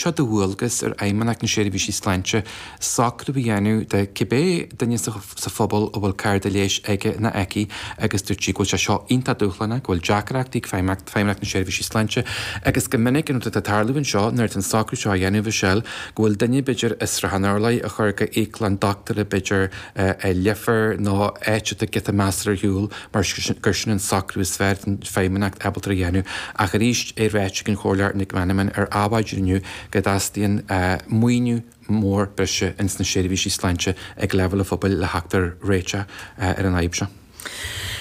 seo de dhualgas ar Fheidhmeannacht na Seirbhísí Sláinte socrú a dhéanamh do cibé duine sa phobal a bhfuil cárta leighis aige nó aici agus dúirt sí go bhfuil sé seo iontach dúshlánach, go bhfuil deacrachtaí ag feidhmeannacht Feidhmeannacht na Seirbhísí Sláinte agus go minic an rud atá ag tarlú anseo nuair atá an socrú seo á dhéanamh i seal go bhfuil duine b'fhéidir i Srath an Urláir a chur go íoclann dochtúra b'fhéidir i Leifear nó áit atá giota measartha ar shiúl mar gur sin an socrú is fearr atá an Fheidhmeannacht ábalta a dhéanamh, ach arís é ráite ag an Chomhairleoir Nic Meanman ar Adhmhaidin inniu go dteastaíonn maoiniú mór breise ins na seirbhísí sláinte ag leibhéal an phobail le theacht ar réiteach ar an fhadhb seo.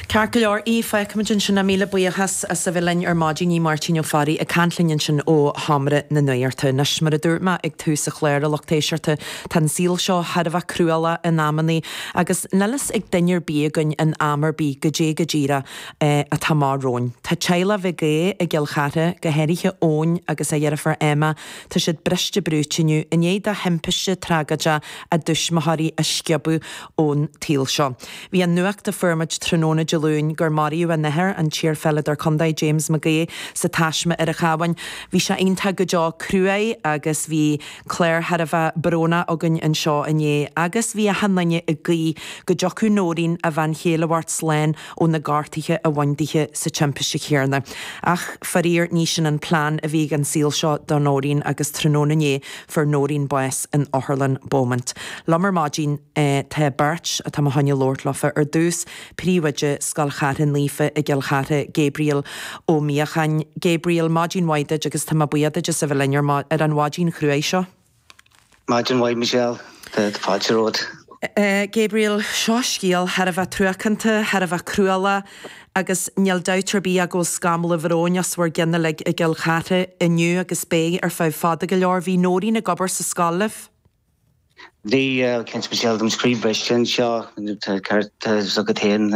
Ceart go leor, Aodh, feicfimid ansin ach míle buíochas as a bheith linn ar maidin, Aodh Máirtín Ó Fearraigh ag caint linn ansin ó Sheomra na Nuachta. Anois, mar a dúirt mé ag tús an chláir, a lucht éisteachta, Tá an saol seo thar a bheith cruálach in amannaí agus níl fhios ag duine ar bith againn in am ar bith goidé go díreach atá amach romhainn. Tá teaghlach McHugh i gCill Chartha, go háirithe Ryan agus a dheirfiúr Emma, tá siad briste brúite inniu i ndiaidh dá thimpiste tragóideach a dtuismitheoirí a sciobadh ón tsaol seo. Bhí an nuacht a fuair muid tráthnóna Dé Luain gur maraíodh a n-athair, an t-iarPheileadóir Contae, James McHugh, sa taisme ar an Chabhán, bhí sé iontach go deo cruaidh agus bhí. Clár thar a bheith brónach againn anseo inné agus bhí achan duine ag guí go dtiocfadh Noreen, a bhean chéile a bheart slán ó na gortuithe a bhain dithe sa timpiste chéanna. Ach faraor ní sin an plean a bhí ag an saol seo do Noreen agus tráthnóna inné fuair Noreen bás in Otharlann Beaumont. Liom ar maidin tá beirt atá mo choinne labhairt leofa ar dtús. Príomhoide Scoil Chártha Naofa i gCill Chartha, Gabriel Ó Míocháin. Gabriel, Maidin mhaith duit agus tá mé buíoch duit as a bheith linn ar an mhaidin chruaidh seo. Maidin mhaith Michelle, tá fáilte romhat. Gabriel, Seo scéal thar a bheith truacánta, thar a bheith cruálach agus níl dabht ar bith agam go bhfuil scamall bhróin os bhur gcionn uilig i gCill Chartha inniu agus beidh ar feadh fada go leor. Bhí Noreen ag obair sa scoil libh. Bhí cead speisialta agam scríobh breise anseo, tá ceart agat féin.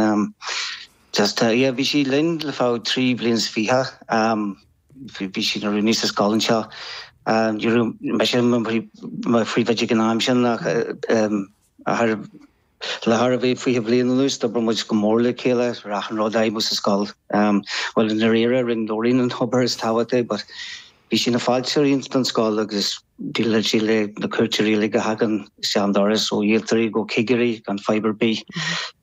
Just, yeah, bhí sí linn le feadh trí bhliain is fiche. Bhí sí ina rúnaí sa scoil anseo. Ní raibh mise i mo phríomhoide ag an am sin ach a Le thar a bheith 20 bhliain anuas, d'obair muid go mór le chéile ar achan rud a fheidhmeodh sa scoil. Bhuel, i ndairíre, rinne Noreen an obair is tábhachtaí but bhí sí na fáilte a roinnt don scoil agus dealadh sí le na cúirte rialaigh a thagann isteach an doras, ó iarrthóirí go cigirí, gan fadhb ar bith.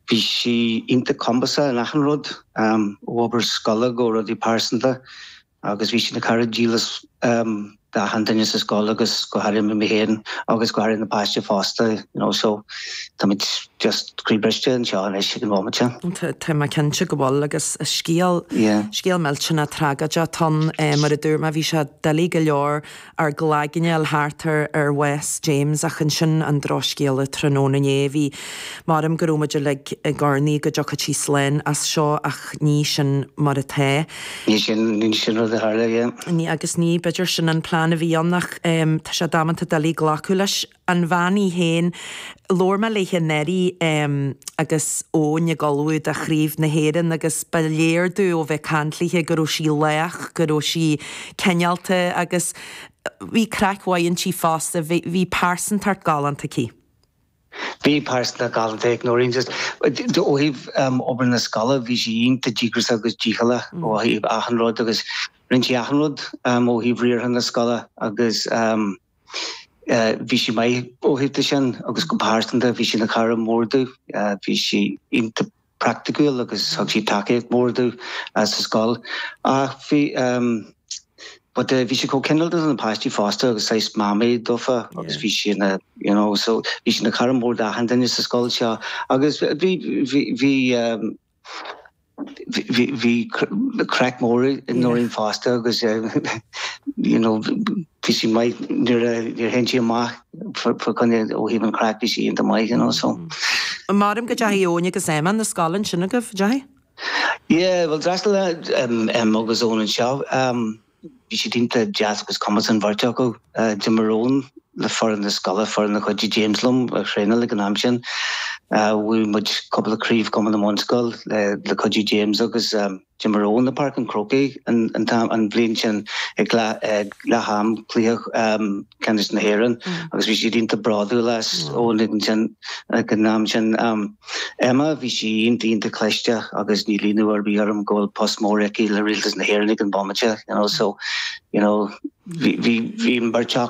Bhí sí iontach cumasach in achan rud, ó obair scoile go rudaí pearsanta. agus bhí sí ina cara dílis d'achan duine sa scoil agus go háirithe mé féin agus go háirithe na páistí fosta you know so táimid just croí briste anseo anois ag an bhomaid sin. Tá mé cinnte go bhfuil agus is scéal, scéal millteanach tragóideach, atá ann, mar a dúirt mé, bhí sé doiligh go leor ar glaigineáil thart ar ar chás James ach ansin an drochscéala tráthnóna inné a bhí mar'im go raibh muid uilig ag urnaí go dtiocfadh sí slán as seo ach ní sin mar atá. Ní sin ní sin rud a tharla. Ní agus ní b'fhéidir sin an plean a bhí ann ach tá sé damanta doiligh glacadh leis. an bhean í féin. Labhair mé léithe nuair a bhí Emma agus Eoin ag ullmhú do Chraobh na hÉireann agus ba léir domh ó bheith ag caint léithe go rabh sí lách, go rabh sí cineálta agus bhí craic mhaith inti fosta, bhí, bhí pearsantacht galánta aici. Bhí pearsantacht galánta ag Noreen just ó thaobh em obair na scoile, bhí sí iontach díograiseach agus dícheallach ó thaobh achan rud agus rinn sí achan rud em ó thaobh riartha na scoile agus em. Bhí sí maith ó thaobh de sin agus go pearsanta bhí sí ina cara mór domh. Bhí sí iontach praiticiúil agus thug sí tacaíocht mhór domh sa scoil. Ach bhí but bhí sí chomh cineálta do na páistí fosta agus saghas mamaí dófa agus bhí sí ina you know so bhí sí ina cara mór d'achan duine sa scoil seo agus bhí bhí bhí Bhí craic mór ag Noreen fosta agus you know bhí sí maith nuair a théadh sí amach for kind of ó thaobh an chraic bhí sí ionta maith you know so. Mairim go dteachaidh Eoin agus Emma 'na scoile ansin agaibh, a dteachaidh? Yeah, bhuel d'fhreastal Emma agus Eoin anseo. Bhí siad iontach deas agus cumasach an bheirt acu. D'imir Eoin le foireann na scoile, foireann a chuidigh James liom a thraenáil ag an am sin. Bhuaigh muid cúpla craobh Cumann na mBunscol le cuidiú James agus d'imir Eoin i bPáirc an Chrócaigh an bhliain sin ag leath am cluiche. ceannais na hÉireann agus bhí siad ionta bródúil as Eoin ag an am sin. Emma bhí sí ionta ionta cliste agus níl ionadh ar bith orm go bhfuil post mór aici le Rialtas na hÉireann ag an bhomaite, you know, so, you know, bhí, bhí, bhí an beirt acu,